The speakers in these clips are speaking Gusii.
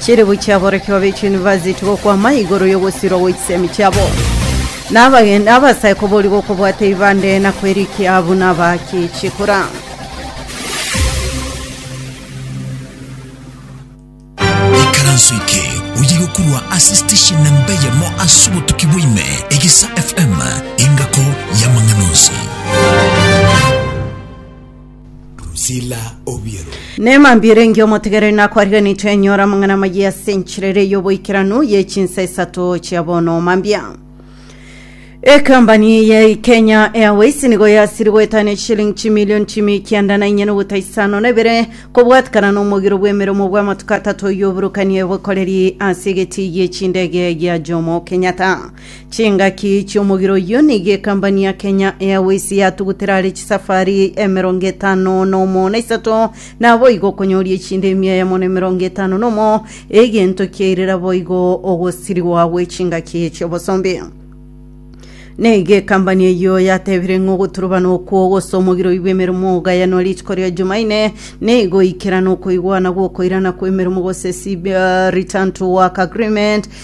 Chiribu chi'aborokigwa be chiyunivasiti gokwama igoro y'ogosirwa gwe chisemi chiabo, na abageni abasae koboria gokobwata ebibande na kwerikia buna abaaki chikura. Ekaranso eke oye gokorwa ase station namba eyemo ase obotuki bwaime, Egesa FM, engako y'amang'ana onsi. Drusilla Obiero. Neema mbiere engiya omotigereri nakwariganetwe enyora amang'ana amayia ase enchera ere y'oboikeranu y'echinsa isato chia bono mambia ekambani ya kenya airways nigo yasiri goetania echishilingi chimilioni chimi kianda na inyana obuta isano na ibere kobwatikana na omogiro bw'emeremo bw'amatuko atato y'oburukani y'obokoreri ase egeti y'echindege gia jomo kenyatta Chingaki chi'omogiro oyio nigo ekambani ya Kenya Airways yatugutera are chisafari emerongo etano nomo na isato, naboigo okonyoria echinde emia ya mono emerongo etano nomo, egento kiairera boigo ogosirigwa gwe chingaki chi'obosombe. Nigo ekambani eyio yatebire ng'a ogoturubanwa okwo gose omogiro oibwe emeremo ogayanwa rituko ria Jumaine, nigo ikerana okoigwana gw'okoirana kw'emeremo gose CB, Return to Work Agreement,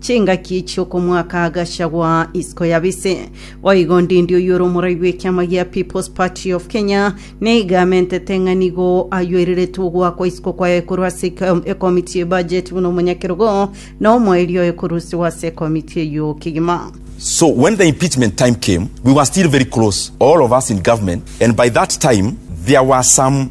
Chingaki chi'okomoaka agachagwa isiko ya bise. Boigo Ndindi oyio ore omorai bw'ekiama gia People's Party of Kenya nigo amentete ng'a nigo ayoireretwe ogoakwa isiko kwaye korwa ase eke- ekomiti ye budget buna omonyakerogo na omoerio oye korusiwa ase ekomiti eyio kegima. So when the impeachment time came, we were still very close, all of us in government, and by that time there were some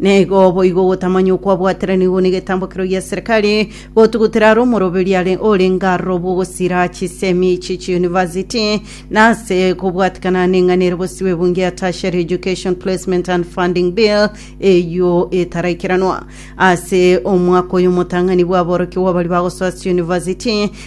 na igo boigo gotamanya okwabwatire nigo negetambokero gia serikali gotugutera aro omoroberi are ore ngaro bogosira chisemi chi chiuniversity na ase kobwatikana neng'ana ere bosibe ebunge ya tertiary education placement and funding bill eyio etaraikeranwa ase omwaka oyo omotang'ani bwaborokigwa abari bagosoa ase university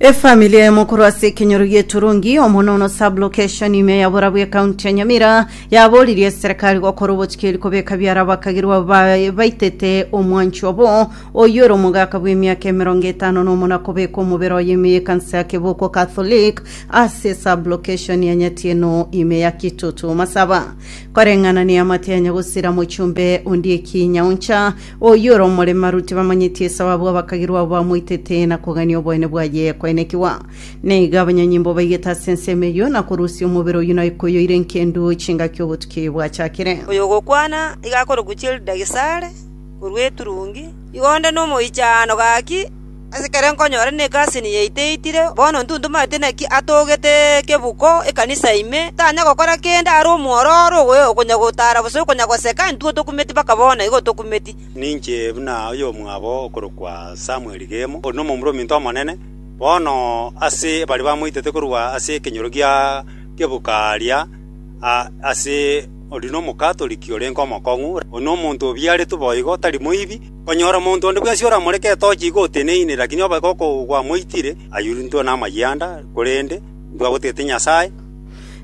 efamili eye mokoro ase ekenyoro gieturungi omonono sublocation ime ya borabu ekaunti ya nyamira yaboririe serikali gokora obochikeri kobeka biara abakagirwa ba- baitete omwanchi obo oyio ore omogaka bw'emiaka emerongo etano na omo na kobeka omobere oye ime yekanisa ya keboko catholic ase sublocation ya nyatieno ime ya kitutu masaba koreng'ana neamate ya nyagosira mochumbe ondieki nyauncha Oyio ore omoremaru tibamanyeti esao abwo abakagirwa abo bamoitete na kogania oboene bwaye koenekigwa. Na iga abanyanyimbo baigete ase ensemo eyio na korusia omobere oyio na ekoyoire nkendu chingaki obotuki oyio bwachakire. Oyo ogokwana iga akorokwa Childagicare, korwa eturungi, iga onde nomoichaano gaki Asekare nkonyore negasi niyaiteitire, bono ntuntumanete naki atogete ekebuko ekanisa ime, tanya gokora kende are omwororo owe okonya gotara gose okonya goseka, intwe tokumeti mpaka bono igo tokumeti. Ninche buna oyomwabo okorokwa Samueli Gemo, ore nomomura ominto omonene bono ase baria bamoitete korwa ase ekenyoro gia kebuko aaria ase. Oria nomokatoriki orenke omokong'u, oria nomonto obiaretwe boigo, tari moibi. Konyora omonto onde bwensi oramoreke etochi igo oteneine, lakini obe gokogwamoitire, ayuruntwe namayianda, korende intwe abotete Nyasae.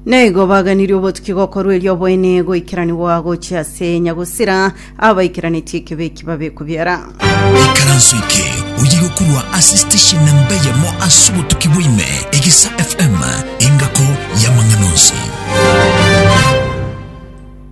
Nigo baganirie obotuki gokorwa erio oboene goikeranigwa gochia ase Nyagusira, abaikeranetie ekibe eki babekwe biara. Ikaranso eke oyigo korwa ase station namba eyemo ase obotuki bwaime, Egesa FM, engako y'amang'ana onsi.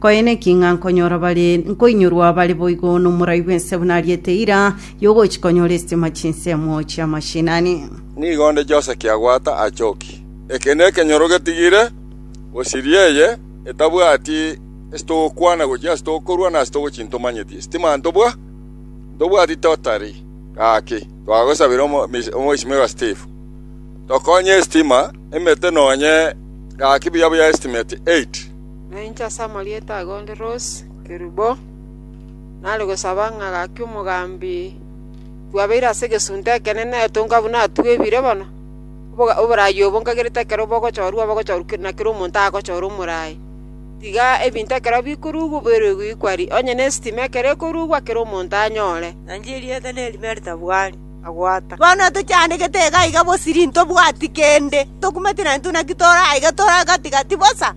Koe neki ng'a nkonyora bare nkoinyorwa bare boigo n'omorai bw'ense buna ariete eira y'ogochia konyora estima chinsemo chi'amashinani. Nigo onde Jose kiagwata achoki. Eke nekenyoro getigire, gosiria eye etabwati ase togokwana gochia ase togokorwa na ase togochia ntomanyeti estima ntobwa ntobwati totari gaki twagosabire omo mise omoisimerwa Steve tokonye estima emete nonye gaki buya buya estimeti 8 Na inche ase amarieta ago onde Rose Kerubo, nare gosaba ng'a gaki omogambi bwabeire ase egesunte ekenene etonka buna atugwa ebire bono, oboraai obo nkagerete ekero bogochorwa bogochorwa na kera omonto agochora omoraai, tiga ebinto ekero bikorugwa oboirwe goikwa rii, onye ne estima ekero ekorugwa kera omonto anyore. Na inche erieta nerime ritabu aria agwata. Bono tochiandegete iga iga bosiri ntobwati kende, tokumeti naintwe naki tore aiga tore gati gati bosa.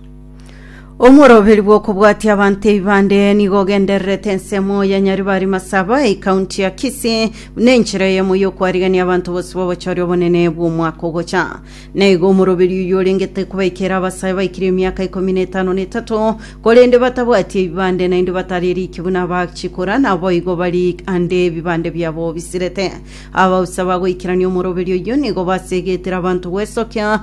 Omworoberi bw'okobwatia abanto ebibande nigo ogendererete ensemo ya Nyaribari Masaba ekaunti ya Kisii buna enchera eyemo y'okwarigania abanto bose babochore obonene bw'omwaka ogocha. Na igo omoroberi oyio orengete kobaikera abasae baikire emiaka ikomi na etano na etato korende batabwati ebibande naende batari eriki buna abachikora naboigo bari ande ebibande biabo bisirete. Abausa bagoikerania omoroberi oyio nigo basegetire abanto gwesokia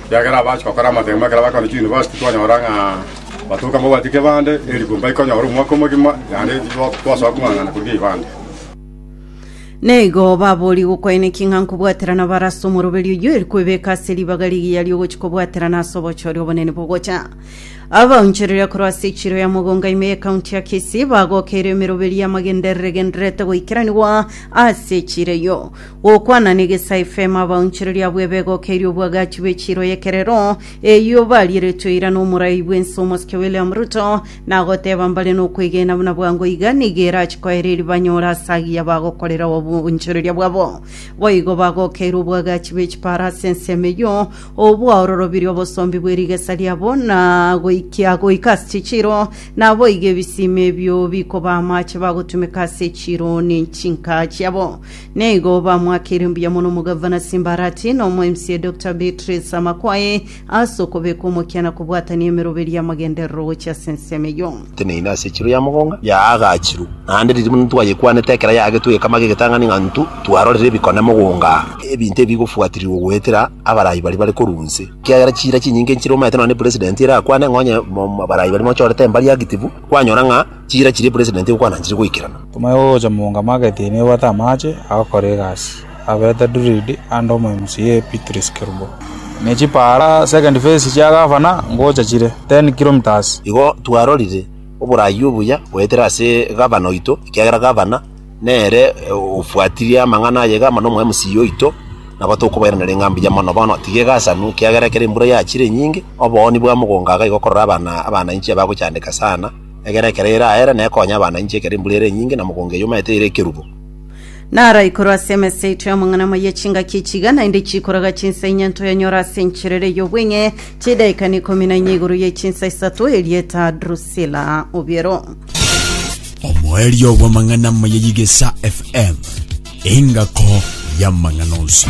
Ekiagera abache gokora amatemo ekero bakoenda chiyunivasiti twanyora ng'a batoka mbabwati kebande, erikumbu baikonyora omwaka omogima, naende titwasoa kong'ang'ana korugia ebande. Naigo baborie gokwanekia ng'a nkobwaterana bare ase omoroberio oyio, eri kwebeka ase ribaga rigiya riogochia kobwaterana ase obochori obonene bogocha. Abaonchoreria korwa ase echiro ya mogongo ime y'ekaunti ya Kisii bagokeire emeroberio y'amagenderere gendererete goikeranigwa ase echiro eyio. Gokwana negesae efemo abaonchereri abwo ebegokeire obwagachi bwe chiiro y'ekerero eyio barieretwe eira n'omorai bw'ense omosike William Ruto, nagoteba mbare nokwegena buna bwango iga nigo erache koera eri banyore ase agiya bagokorera oboonchoreria bwabo. Boigo bagokeire obwagachi bwe chipara ase ensemo eyio obwaororobirie obosombi bwe rigesa riabo na goikia goika ase chichiiro, naboigo ebisima ebio bikoba amache bagotumeka ase echiiro ne chinka chiabo. Nigo bamwakire mbuya mono omogavana Simbarati na omweMCA Doctor Beatrice Amakwaye ase okobeka omokia na kobwatania emeroberio y'amagenderero gochia ase ensemo eyio. Teneine ase echiro ya mogonga yaagachirwe, naende riria buna twayekwanete ekero yaagetwe egekamwa ge'egetang'ani ng'a intwe twarorire ebikone mogonga aa, ebinto ebi bigofuatirirwa goetera abarai baria bare korwa inse. Ekiagera chiira chinyinge nchire omanyete nonya ne president erakwane ng'a onye abarai baria mochorete embari active, kwanyora ng'a. Chiira chiria president okwananchire goikerana. Timothy ogocha moong'ama agetini ebwate amaache, agakora egasi, abeete Druid ande omoemisi ye Epitrus Kerubo. Ne chipaara, second phase, chia gavana ngocha chire 10 kilometres. Igo twarorire oboraai obuya goetera ase gavana oito, ekiagera gavana nere obwatirie amang'ana aye iga amo nomoemisi oito, nabo tokobairaneria ng'a mbuya mono. Bono tiga egasanu, ekiagera ekero embura yachire enyinge, obooni bwa mogongo aga igo okorora abana abana inche abagochandeka sana. Egere ekero ere aere, na ekonya abana inche ekero embura ere enyinge, na mogongo eyio omaete ere ekerubo. Naro aikoro ase emesa yaito y'amang'anama ye chingaki chiga naende chiikoraga chinsa inye ntoyanyore ase enchera ere y'obweng'e chidaika n'ikomi na inye igoro ye chinsa isato, erieta Drusila obiero. Omoerio bw'amang'anama ya Yigesa FM, engako y'amang'ana onsi.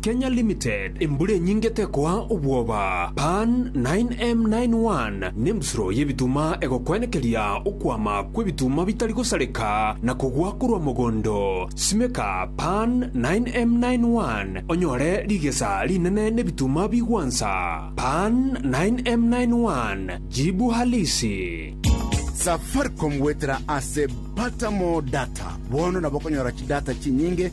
Kenya Limited, embura enyinge tekoa obwoba, Pan 9M91 nembusuro y'ebituma egokwenekeria okwama kw'ebituma bitari gosareka na kogwa korwa mogondo. Simeka Pan 9M91 onyore rigesa rinene n'ebituma bigwansa. Pan 9M91, jibu halisi. Safaricom goetera ase Pata More Data, bono nabokonyora chidata chinyinge